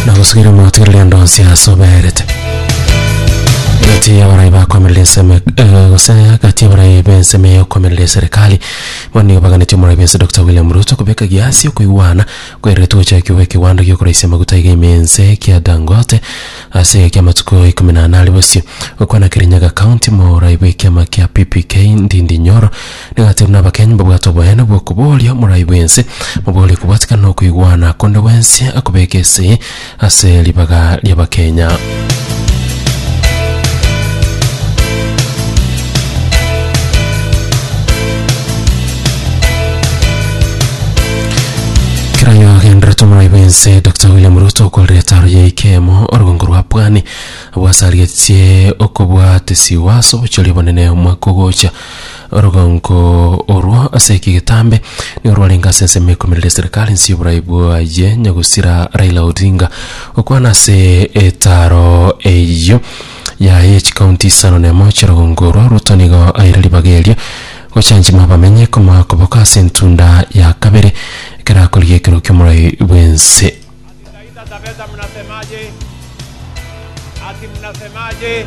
nagosugira omwatwerire ndonsi asoberete gati y'abarai bakomerera ensemo eh, gose gati y'abarai b'ensemo y'okomerera eserikali bono nigo baganeti omorai bwense dr william ruto kobeka giasi okoigwana kwererete gochakigwa ekiwanda giokoraisia amaguta iga ime ense kia dangote ase egeka ki'amatuko ikomi na anare bosio gokwana kirinyaga county morai bw'ekiama kia ppk ndindi nyoro Nigati buna abakenyi mbabwate oboyene bw'okobooria omorai bw'ense, moboorie kobwatikana na okoigwana konde gwensi akobeke esegi ase ribaga ri'Abakenya. Keranyo agenderete omorai bw'ense Doctor William Ruto okorera etaaro ya Ikemo orogongo rwa Pwani, abwasarigetie okobwatisiwa ase obochori obonene omwaka ogocha. Orogongo orwo ase eki getambe nigo rwarenge ase ensemo ya ikomerero ya serikali nsi y'oborai bwaye nyagusira Raila Odinga gokwana ase etaaro eyio yaye ya chikaunti isano na emo chi'orogongo orwo Ruto nigo aire ribaga erio gochanchima abamenyi komoa koboko ase entunda ya kabere ekero akorigia ekero ki'omorai bw'ense. Akikaita Taveta mnasemaje? Ati mnasemaje?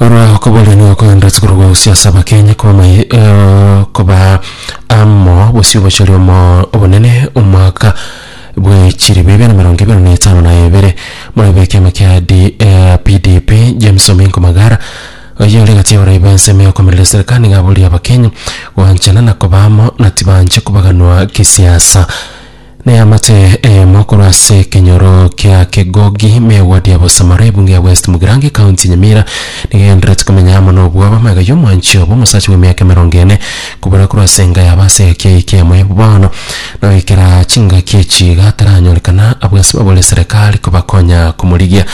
Oro okobori nigo okogenderete korwa gosusia ase abakenya koba mai- eh, koba amo bosio bocharia omo obonene omwaka bwe chiri bibe na emerongo ebere na etano na ebere muna bwa ekiama kia D- eh, PDP James Ominko Magara oyio ore egati ya borai ba ensemo ya okomerera eserekari nigo aboria abakenya goanchana na koba amo na tibanche kobaganwa kisiasa. Neamate eyemo korwa ase ekenyoro kia Kegogi, megwadi ya Bosamara, ebunge ya West Mugirango, Ekaunti ya Nyamira, nigo egenderereti komenya amo nobwoba amaiga y'omwanchi obo, omosacha bw'emiaka emerongo ene, kobora korwa ase enga yabo ase egaki eye keyemo ya bono, nogoikera chingaki echi iga ataranyorekana abwo ase babore serekari kobakonya komorigia.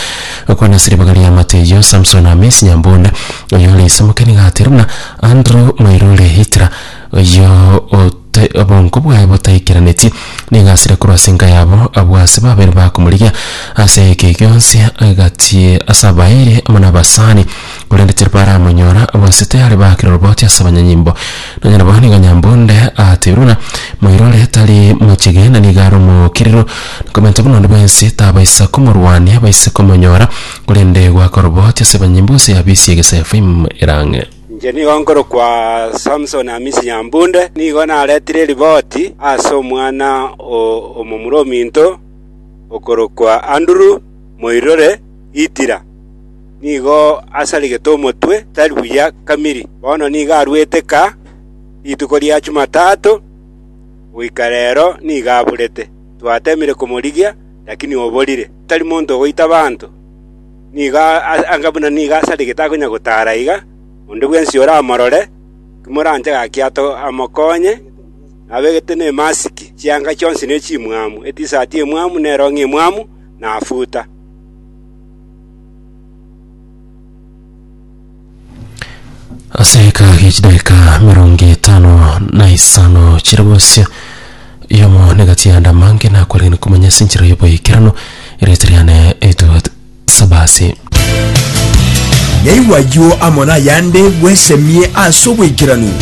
Okwana ase ribaga ri'eamate eyio, Samson Hamisi Nyambunda, oyore isemoke nigo ateire buna Andrew Mwairure Hitler, Oyio ote obongo bwaye botaikeranetie, nigo asire korwa ase enka yabo, abwo ase babere bakomorigia ase eke gionsi agatie ase abaeire amo nabasani, korende tiribaramonyora, abwo ase tayare bakire oroboti ase abanyanyimbo. Nonya nabo nigo nyambunde ateirwe ng'a, Moirore tari mochege, na nigo are omookerero, na komenta buna onde bwensi tabaisa komorwania, baise komonyora, korende goaka oroboti ase abanyanyimbo gose yabisia egesefaimu erang'e. Inche nigo nkorokwa Samson Hamisi Nyambunde, nigo naretire eriboti ase omwana omomura ominto okorokwa Andrew Moirure Itira, nigo asarigete omotwe tari buya kamiri. Bono nigo arwete kaa rituko ria Chumatato, goika rero nigo aburete. Twatemire komorigia, lakini oborire. Tari monto ogoita abanto. nigo anga buna nigo asarigete akonya gotaara iga, onde bwensi oramorore, timoranche gaki ato amokonye, nabegete nemasiki chianga chionsi ne chimwamu, etisati emwamu, ne erong'i emwamu, na afuta. ase ekagi chidaka mirongo etano na isano chire bosio yomo negati ya ndamange nakwarigani komanya ase enchera y'oboikerano erete riane etuot sabasi Yaigwa ayio amo nayande bwesemie ase oboikeranu.